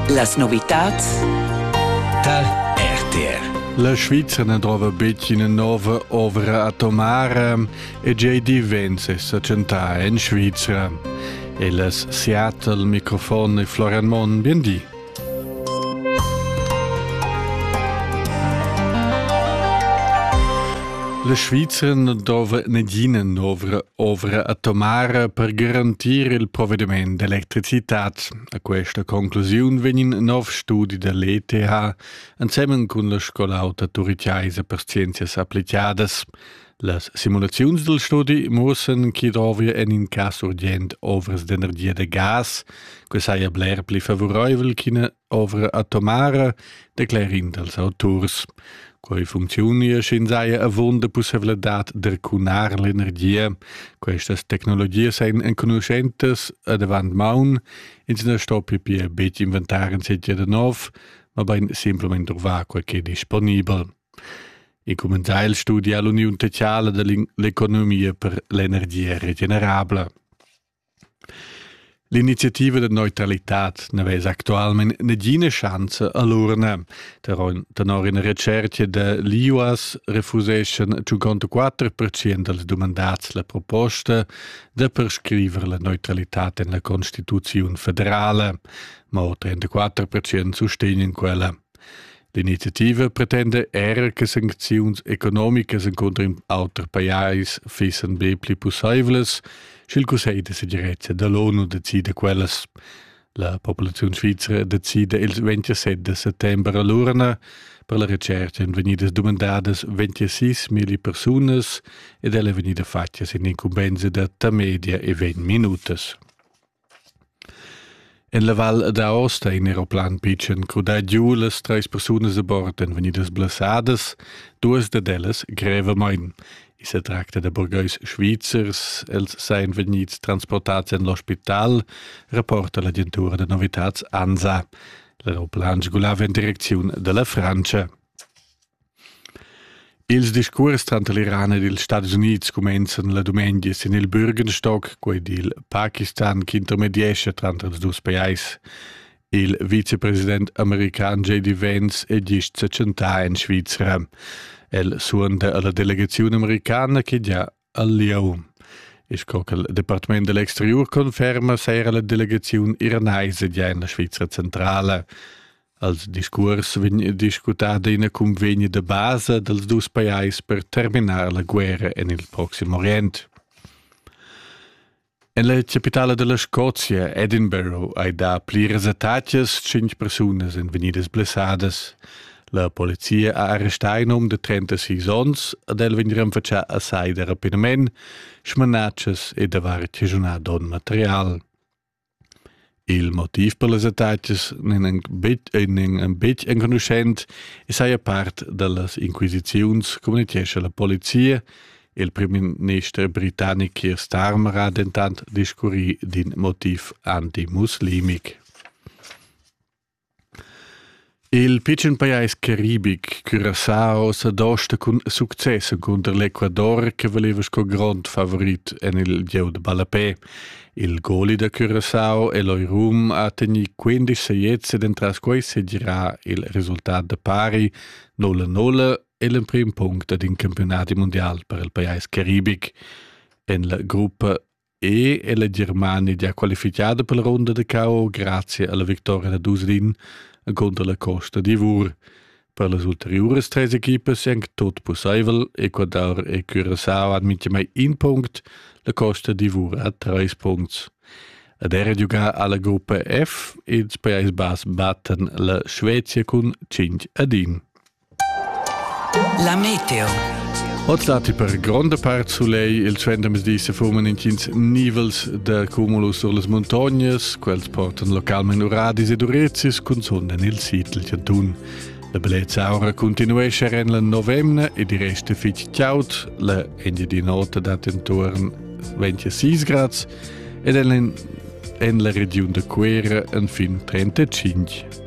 Las novitads Tal RTR La Svizzera ne trova betg ina nova ovra atomara e gei diventa s'accentà en Svizzera. E las Seattle, microfon e Florian Monn, bien di. La Svizra na dova negina novra ovra atomara per garantir il provvediment d'electricitad. A questa conclusiun vegn in nov studi da l'ETH ensemen cun la scola auta turiciaisa per scienzias applicadas. Las simulaziuns dal studi muossan chi dovria en in cas urgent ovras d'energia da gas, que saja bler pli favuraivel ch'ina ovra atomara, declera in dals auturs. Quei funcziunia sch'in saja avunda pussevladad d'ercunar l'energia. Questas tecnologias ein enconuschentas ad avant maun, ins na stoppi pia betg inventar in sitio da nov, ma bein simplament truvar quel che è disponibel. E cumenzà il studi ha l'uniun teatrala da l'economia per l'energia regenerabla. L'iniziativa da neutralitad n'avess actualmain negina schanza a l'urna. Tenor ina recerca da l'IUAS refuseschan 54% dals dumandats la proposta da prescriver la neutralitad en la Constituziun federala, ma 34% sustegnan quella. L'iniziativa pretenda era che sancziuns economicas encunter auter pajais fissan be pli pussaivlas, sch'il Cussegl da segirezza da l'ONU decida quellas. La populaziun svizra decida il 27 de settembre all'urna per la recerca èn vegnidas dumandadas 26.000 persunas ed ella è vegnida fatga sin incumbensa da tamedia e 20 minutas. En la val ad Aosta in aeroplan pitschen crudà giu las treis persunas a bord èn vegnidas blessadas, duas dad ellas grevamain. I sa tracta da burgais svizzers, els sajan vegnids transportads en l'ospital, rapporta l'agentura da novitads ANSA. L'aeroplan sgulava en direcziun da la Frantscha. Ils discuors tranter l'Iran ed ils Stadis Unids cumenzan la dumengia sin il Bürgenstock, quei dil Pakistan ch'intermediescha tranter ils dus pajais. Il vicepresident american JD Vance è gist setschentà en Svizra. El suonda alla delegaziun americana che gia al lieu. E sco che il Departament dell'exterior conferma, seira la delegaziun iranaisa già in la Svizra centrala. Als discurs vegn discutada ina convegna de base dels dus pajais per terminar la guerra en il Proximo Orient. En la chapitala dalla Scozia, Edinburgh, ei da pliras attacas tschintg persunas ein vegnidas blessadas. La polizia ha arrestà in um de 36 onns ed el vegn renfatschà a sai da rapinament, smanatschas e davar chaschunà don material. Il motiv per las attacas n'en betg enconuschent e saja part da las inquisiziuns, communitgescha la polizia. Il primminister britannic Keir Starmer ha dentant discurrì d'in motiv antimuslimic. Il pitschen pajais caribic curascha oz ad ost cun success encunter l'Ecuador che valeva sco grond favorit en il gieu da ballapè. Il goli da Curacao e l'Oirum ha tegnì 15 sajetts ed entras quai segirà il resultat da pari 0-0 e l'emprim punct ad in campiunadi mundial per il pajais caribic. En la gruppa E ella Germania gia qualifichada per la ronda da cao grazie alla victoria da Dusrin contra la Costa d'Ivor. Per las ulteriores tres equipas è anche tot possibel. Ecuador e Curaçao han mintgamai un punct, la Costa d'Ivor ha tres punts. Ed era giocà alla gruppa F, ils Paesi Bass battan la Svezia cun 5 ad 1. La meteo. Oz datti per gronda part sulegl, il trendamesdi se fuman intgins nivels da cumulus sur las montognas, quels portan localment uradis ed urezis cunzun en il sitel chantun. La bellezza aura continuesce en la novemna e di resta fitg chaud, la Engiadin'Ota dat intorn 26 grads ed en la regiun da Cuera en fin 35.